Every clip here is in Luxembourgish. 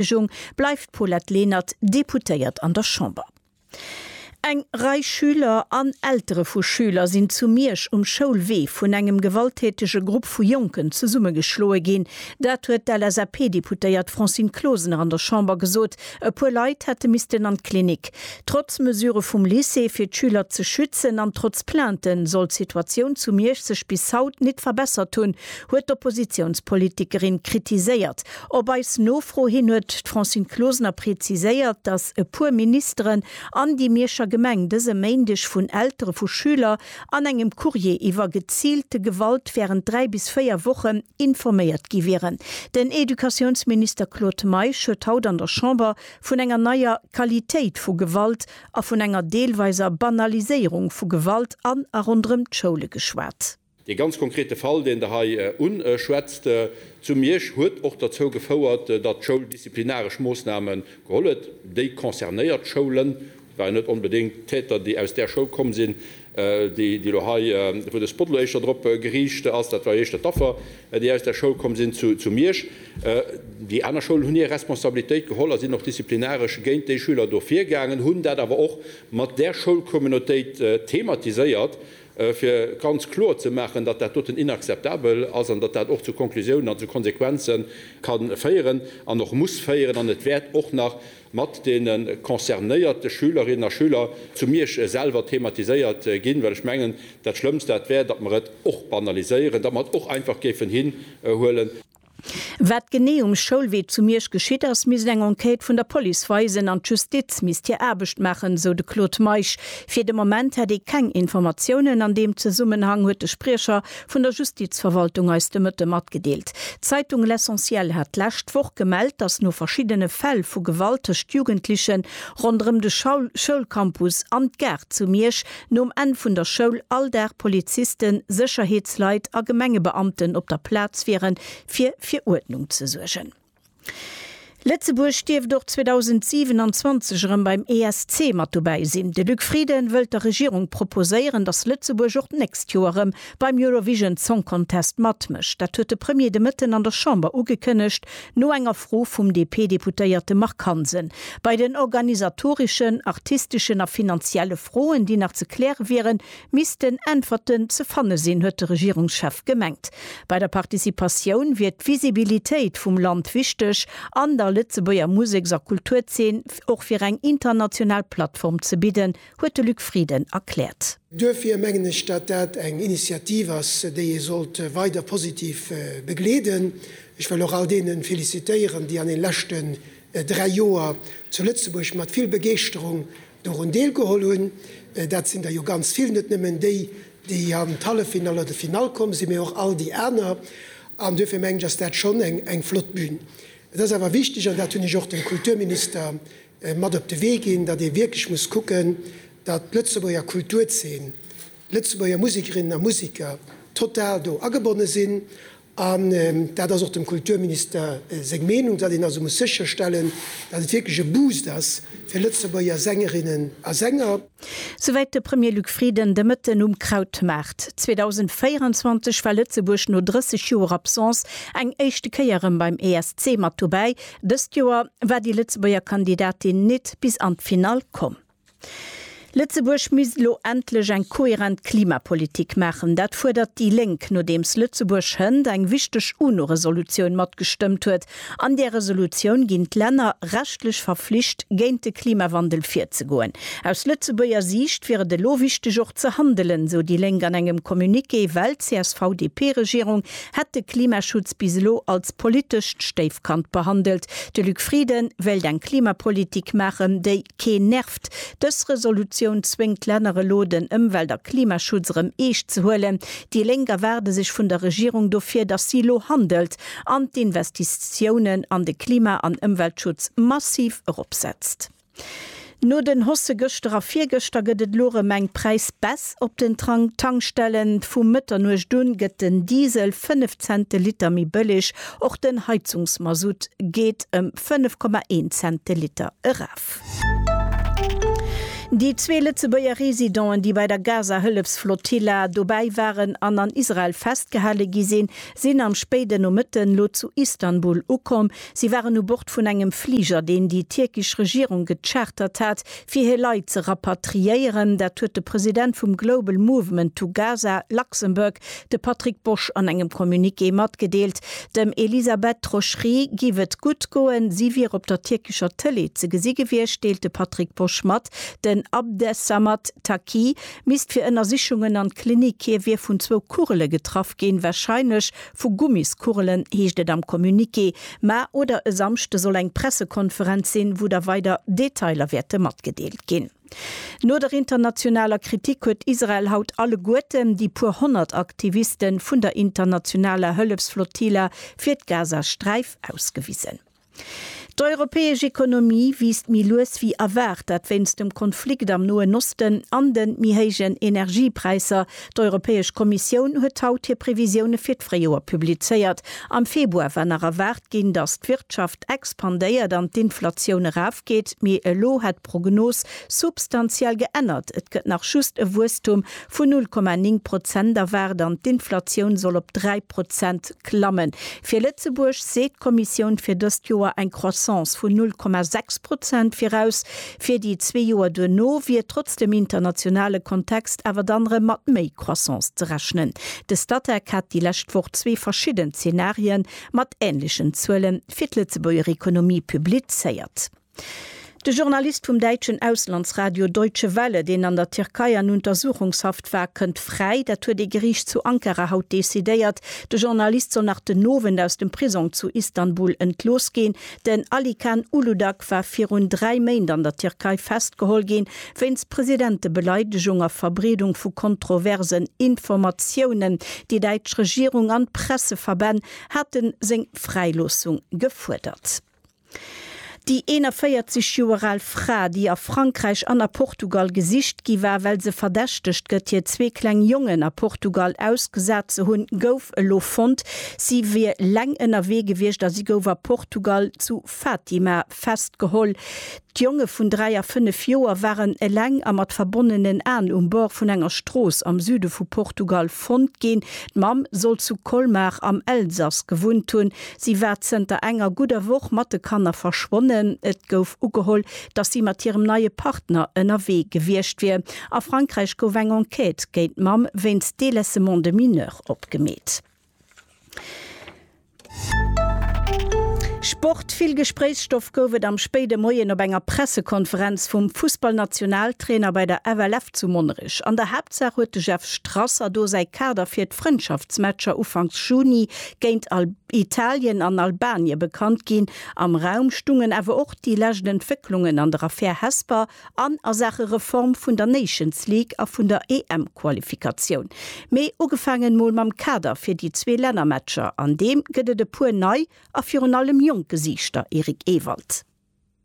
Entschëllegung bleift d'Paulette Lenert Deputéiert an der Chamber. Eng Rei Schüler an Eltere vu Schüler sinn zu Miersch um Schoulwee vun engem gewalttätege Grupp vu Jonken zesummegeschloe ginn. Dat huet d'LSAP-Deputéiert Francine Closener an der Chamber gesot. E puer Leit hätte missten an d'Klinik. Trotz Mesure vum Lycée fir d'Schüler ze schützen an trotz Plainten soll d'Situatioun zu Miersch sech bis haut nit verbessert hunn, huet d'Oppositiounspolitikerin kritiséiert. Op eis Nofro hin huet d'Francine Closener preziséiert, datt e puer Ministeren an déi Mierscher Gemeng dëse Méindeg vun Eltere vu Schüler an engem Courrier iwwer geziilte Gewalt wärend dräi bis véier Wochen informéiert gi wieren. Den Educatiounsminister Claude Meisch huet haut an der Chamber vun enger neier Qualitéit vu Gewalt a vun enger deelweiser Banaliséierung vu Gewalt an a ronderëm d'Schoule geschwat. Dee ganz konkrete Fall, deen Der hei unschwätzt zu Miersch, huet och derzou gefouert, datt d'Schoul disziplinaresch Moossname geholl huet. Déi concernéiert Schoulen, et waren net onbedéngt d'Täter, déi aus där Schoul komm sinn, déi elo hei, wou de Spot elo éischter drop geriicht ass, dat war jo éischter d'Affer, déi aus där Schoul komm sinn zu Miersch. Déi aner Schoulen hunn hir Responsabilitéit geholl a sinn och disziplinaresch géint déi Schüler do virgaangen, hunn dat awer och mat där Schoulcommunautéit thematiséiert. fir ganz kloer ze maachen, datt dat doten inakzeptabel ass an datt dat och zu Konklusiounen an zu Konsequenze ka féieren an och muss féieren. An et wäert och nach mat deene concernéierte Schülerinnen a Schüler zu Miersch selwer thematiséiert ginn, well ech mengen, dat Schlëmmst dat wär, datt mer et och banaliséieren, datt mer et och einfach géifen hinhuelen. Wat genee um Schoulwee zu Miersch geschitt ass, misst eng Enquête vun der Police weisen an d'Justiz misst hir Aarbecht maachen, esou de Claude Meisch. Fir de Moment hätt ee keng Informatiounen an deem Zesummenhang, huet de Spriecher vun der Justizverwaltung eis de Mëtte matgedeelt. D'Zeitung L'Essentiel hat d'lescht Woch gemellt, datt no verschiddene Fäll vu Gewalt tëscht Jugendlechen ronderëm de Schoulcampus an d'Gare zu Miersch, Nom Enn vun der Schoul all Dag Polizisten, Sécherheetsleit a Gemengebeamten op der Plaz wiere fir fir Uerdnung ze suergen. Lëtzebuerg dierft och 2027 erëm beim ESC mat dobäi sinn. De Luc Frieden wëllt der Regierung proposéieren, datt Lëtzebuerg och d'nächst Joer erëm beim Eurovision Song Contest matmécht. Dat huet de Premier de Mëtten an der Chamber ugekënnegt, no enger Fro vum DP-Deputéierte Marc Hansen. Bei den organisatoreschen, artisteschen a finanzielle Froen, déi nach ze kläre wieren, missten Äntwerten ze fanne sinn, huet de Regierungschef gemengt. Bei der Participatioun wier d'Visibilitéit vum Land wichteg an der Lëtzebuerger Museks a Kulturzeen och fir eng international Plattform ze bidden, huet de Luc Frieden erkläert. Duerfir mengen ech, datt dat eng Initiativ ass, déi ee sollt weider positiv begleeden. Ech wëll och all deene felicitéieren, déi an den leschten dräi Joer zu Lëtzebuerg mat vill Begeeschterung dorun deelgeholl hunn. Dat sinn der jo ganz vill, net nëmmen déi, déi an d'Halleffinall oder d'Finall komm sinn, mee och all déi aner. An duerfir mengen ech, ass dat schonn eng flott Bühn. Et ass awer wichteg, an dat hunn ech och dem Kulturminister mat op de Wee ginn, datt ee wierklech muss kucken, datt d'Lëtzebuerger Kulturzeen, d'Lëtzebuerger Musikerinnen a Musiker total do agebonne sinn. An dat ass och dem Kulturminister seng Meenung, datt een also muss sécherstellen, datt et wierklech e Boost ass fir Lëtzebuerger Sängerinnen a Sänger. Souwäit de Premier Luc Frieden de Mëtten um Krautmaart. 2024 war Lëtzebuerg no 30 Joer Absence eng éischte Kéier erëm beim ESC mat dobäi. Dëst Joer war déi Lëtzebuerger Kandidatin nit bis an d'Finall komm. Lëtzebuerg misst elo endlech eng kohärent Klimapolitik maachen. Dat fuerdert déi Lénk, nodeems Lëtzebuerg hënt eng wichteg UNO-Resolutioun matgestëmmt huet, An där Resolutioun ginn d'Länner rechtlech verflicht, géint de Klimawandel virzegoen. Aus Lëtzebuerger Siicht wier et elo wichteg och ze handelen, sou déi Lénk an engem Communiqué, well d'CSV-DP-Regierung hätt de Klimaschutz bis elo als politescht Stéifkand behandelt. De Luc Frieden wéilt eng Klimapolitik maachen, déi keen nervt. Dës Resolutioun zwéngt d'Länner elo, den Ëmwelt a Klimaschutz erëm eescht ze huelen. Déi Lénk erwaarde sech vun der Regierung dofir, datt si elo handelt. an d'Investitiounen an de Klima an Ëmweltschutz massiv eropsetzt. No den Hosse gëschter a virgëschter gëtt et elo erëm eng Präisbaisse op den Tankstellen. Vu Mëtternuecht u gëtt den Diesel 5 Cent de Liter méi bëlleg, och den Heizungsmasutt geet ëm 5,1 Cent de Liter eraf. Déi zwee Lëtzebuerger Residenten, déi bei der Gaza-Hëllefsflotilla dobäi waren an an Israel festgehale gi sinn, sinn am spéiden Nomëtten elo zu Istanbul ukomm. Si waren u Bord vun engem Fliger, deen déi tierkesch Regierung gechartert hat, fir hir Leit ze rapatriéieren. Dat huet de President vum Global Movement to Gaza Luxembourg, de Patrick Bosch, an engem Communiqué matgedeelt. Dem Elisabeth Trochery giff et gutt goen, si wier op der tierkescher Tëlee ze gesi gewiescht, deelt de Patrick Bosch mat. Den Abdesamad Taqi Mist fir Ënnersichungen an d'Klinik. Hie wier vun zwou Kugele getraff ginn, warscheinlech vu Gummiskugelen, heescht et am Communiqué. Mä oder e Samschde soll eng Pressekonferenz sinn, wou da weider Detailer wäerte matgedeelt ginn. No der internationaler Kritik huet Israel haut alleguerten déi puer honnert Aktiviste vun der internationaler Hëllefsflottilla fir d'Gazasträif ausgewisen. D'europäesch Ekonomie wiisst méi lues wéi erwaart, dat wéinst dem Konflikt am Noen Osten an de méi héijen Energiepräisser. D'Europäesch Kommissioun huet haut hir Previsioune fir d'Fréijoer publizéiert. Am Februar war nach erwaart ginn, datt d'Wirtschaft expandéiert an d'Inflatioun erafgeet, mee elo hätt Prognos substantiell geännert. Et gëtt nach just e Wuesstum vun 0,9 Prozent erwaart an d'Inflatioun soll op 3 Prozent klammen. Fir Lëtzebuerg seet d'Kommissioun fir dëst Joer eng Croissance vun 0,6 Prozent viraus. Fir déi zwee Joer duerno wier trotz dem internationale Kontext awer dann erëm mat méi Croissance ze rechnen. De Statec hat déi lescht Woch zwee verschidden Zenarië mat änlechen Zuele fir d'Lëtzebuerger Ekonomie publizéiert. De Journalist vum däitschen Auslandsradio Deutsche Welle, deen an der Tierkei an Untersuchungshaft war, kënnt fräi. Dat huet ee Geriicht zu Ankara haut decidéiert. De Journalist soll nach den Owend aus dem Prisong zu Istanbul entlooss ginn. Den Alican Uludag war virun dräi Méint an der Tierkei festgeholl ginn, wéinst Presidentebeleidegung a Verbreedung vu kontroversen Informatiounen. Déi däitsch Regierung an d'Presseverbänn hate seng Fräiloossung gefuerdert. Déi 41 Joer al Fra, déi a Frankräich an a Portugal gesicht gi war, well se verdächtegt gëtt, hir zwee kleng Jongen a Portugal ausgesat ze hunn, gouf elo fonnt. Si wier leng ënnerwee gewiescht a si gouf a Portugal zu Fatima festgeholl. D'Jonge vun 3 a 5 Joer waren eleng a mat verbonnenen Aen um Bord vun enger Strooss am Süde vu Portugal fonnt ginn. D'Mamm soll zu Colmar am Elsass gewunnt hunn. Si war zënter enger gudder Woch mat de Kanner verschwonnen. Et gouf ugeholl, dass si mat hirem neie Partner ënnerwee gewiescht wier. A Frankräich gouf eng Enquête géint d'Mamm wéinst Délaissement de mineur opgemeet. Sport Vill Gespréichsstoff gouf et am spéide Moien op enger Pressekonferenz vum Fussballnationaltrainer bei der FLF zu Monnerech. An der Haaptsaach huet de Jeff Strasser do säi Kader fir d'Frëndschaftsmatcher ufanks Juni géint Italien an Albanie bekannt ginn. Am Raum stungen awer och déi lescht Entwécklungen an der Affär Hesper. An a Saache Reform vun der Nations League a vun der EM-Qualifikatioun. Mee ugefaangen mol mam Kader fir déi zwee Lännermatcher. An deem gëtt et e puer nei a virun allem jonk Gesiichter, Eric Ewald.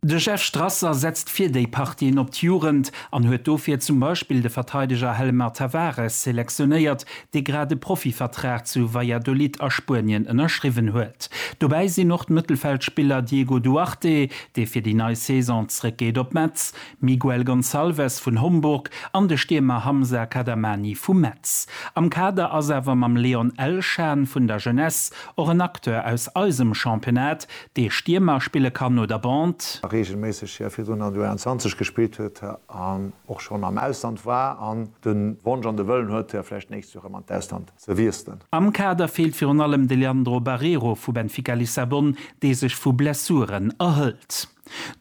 De Jeff Strasser setzt fir déi Partien op d'Jugend an huet dofir zum Beispill de Verteideger Hellemar Tavares selektionéiert, dee grad e Profivertrag zu Valladolid a Spuenien ënnerschriwwen huet. Dobäi sinn och d'Mëttelfeldspiller Diego Duarte, dee fir déi nei Saison zréckgeet op Metz, Miguel Gonçalves vun Homburg an de Stiermer Hamza Kadamani vu Metz. Am Kader ass awer mam Leon Elshan vun der Jeunesse och en Acteur aus eisem Championnat, dee Stiermer spille kann oder Bande. Reegelméisseg, hir virdrun an der U21 gespillt huet an och schonn am Ausland war an de Wonsch an de Wëllen huet, fir vläicht d'nächst Joer erëm an d'Ausland ze wiesselen. Am Kader feelt virun allem de Leandro Barreiro vu Benfica Lissabon, dee sech vu Blessuren erhëlt.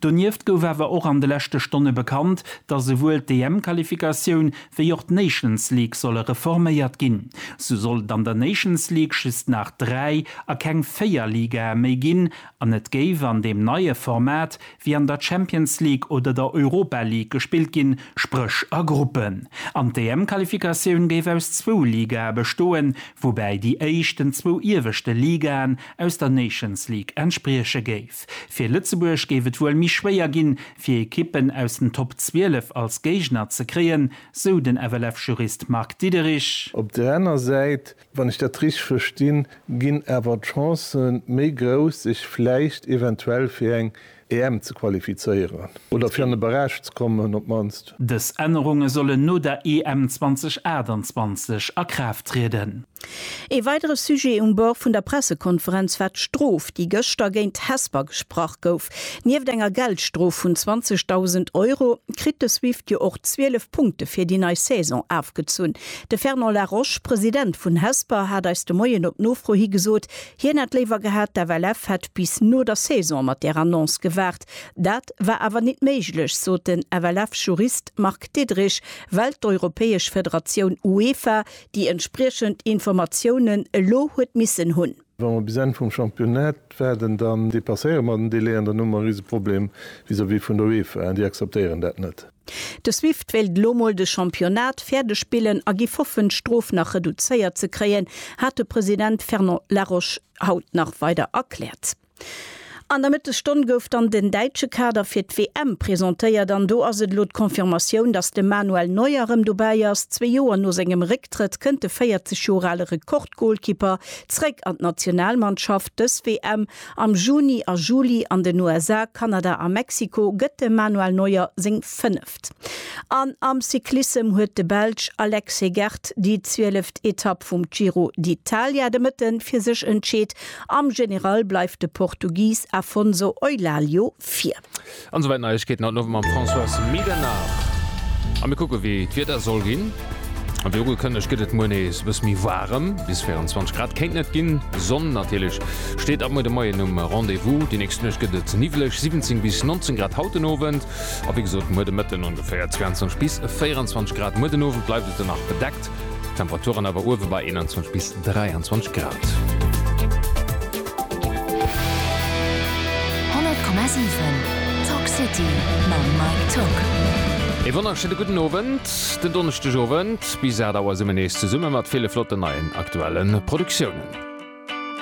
Donieft gouf awer och an de leschte Stonne bekannt, datt esouwuel d'EM-Qualifikatioun wéi och d'Nations League solle reforméiert ginn. Sou soll et an der Nations League just nach dräi a keng véier Ligae méi ginn an et géif an deem neie Format wier an der Champions League oder der Europa League gespillt ginn, spréch a Gruppen. An d'EM-Qualifikatioun géif aus zwou Ligae bestoen, woubäi déi éischten zwou ieweschte Ligaen aus der Nations League entsprieche géif. Fir Lëtzebuerg géif et wuel méi schwéier ginn, fir Ekippen aus den Top 12 als Géigner ze kréien, sou den FLF-Jurist Marc Diederich. Op der aner Säit Wann ech dat richteg verstinn, ginn awer d'Chancë méi grouss, sech vläicht eventuell fir eng EM ze qualifizéieren oder fir an e Barrage ze kommen op d'mannst. Dës Ännerunge sollen no der EM 2028 a Kraaft trieden. Ee weidere Sujet um Bord vun der Pressekonferenz war d'Strof, déi gëschter géint d'Hesper gesprach gouf. Nieft enger Geldstrof vun 20.000 Euro kritt de Swift jo och 12 Punkte fir déi nei Saison afgezunn. De Fernand Laroche, President vun Hesper, hat eis de Moien op Nofro hi gesot, hien hätt léiwer gehat, d'FLF hätt bis no der Saison mat där Annonce gewaart. Dat war awer nit méiglech, sot den FLF-Jurist Marc Diederich, well d'europäesch Federatioun UEFA déi entspriechend Informatiounen elo huet missen hunn. Wa mer bis Enn vum Championnat waarden, dann dépasséiere mer den Délai an dann hu mer e Riseproblem vis-à-vis vun der UEFA. Déi akzeptéieren dat net. De Swift wéilt elo mol de Championnat fäerdeg spillen a giff hoffen, d'Strof nach reduzéiert ze kréien, hat de President Fernand Laroche haut nach weider erkläert. An der Mëttesstonn gouf dann den däitsche Kader fir d'WM presentéiert an do ass et elo d'Confirmatioun, dass de Manuel Neuer erëm dobäi ass. Zwee Joer no sengem Récktrëtt kënnt de 40 Joer ale Rekordgolkipper zeréck an d'Nationalmannschaft. Dës WM am Juni a Juli an den USA, Kanada a Mexiko gëtt dem Manuel Neuer seng 5. Etapp. An am Cyclissem huet de Belsch Alex Hegert déi zwieleft Etapp vum Giro d'Italia de Mëtte fir sech entscheet. Am General bleift de Portugis Afonso Eulálio vir. An esouwäit d'Neiegkeeten haut den Owend mam Françoise Medernach. A mir kucke wéi d'Wieder soll ginn. A wéi ugekënnegt gëtt et muer nees e bësse méi waarem, bis 24 Grad kéinten et ginn. Sonn natierlech steet ab muer de Moien um Rendez-vous. Déi nächst Nuecht gëtt et niwwleg, 17 bis 19 Grad haut den Owend. A wéi gesot, muer de Mëtten ongeféier 22 bis 24 Grad, muer den Owend bleift et dann nach bedeckt, d'Temperaturen awer uewe bei 21 bis 23 Grad. 100,7 Talk City mam Mike Tock. E wonnerschéine gudden Owend, den Donneschdeg Owend. Bis 8 Auer si mir nees zesumme mat ville flotten neien aktuelle Produktiounen.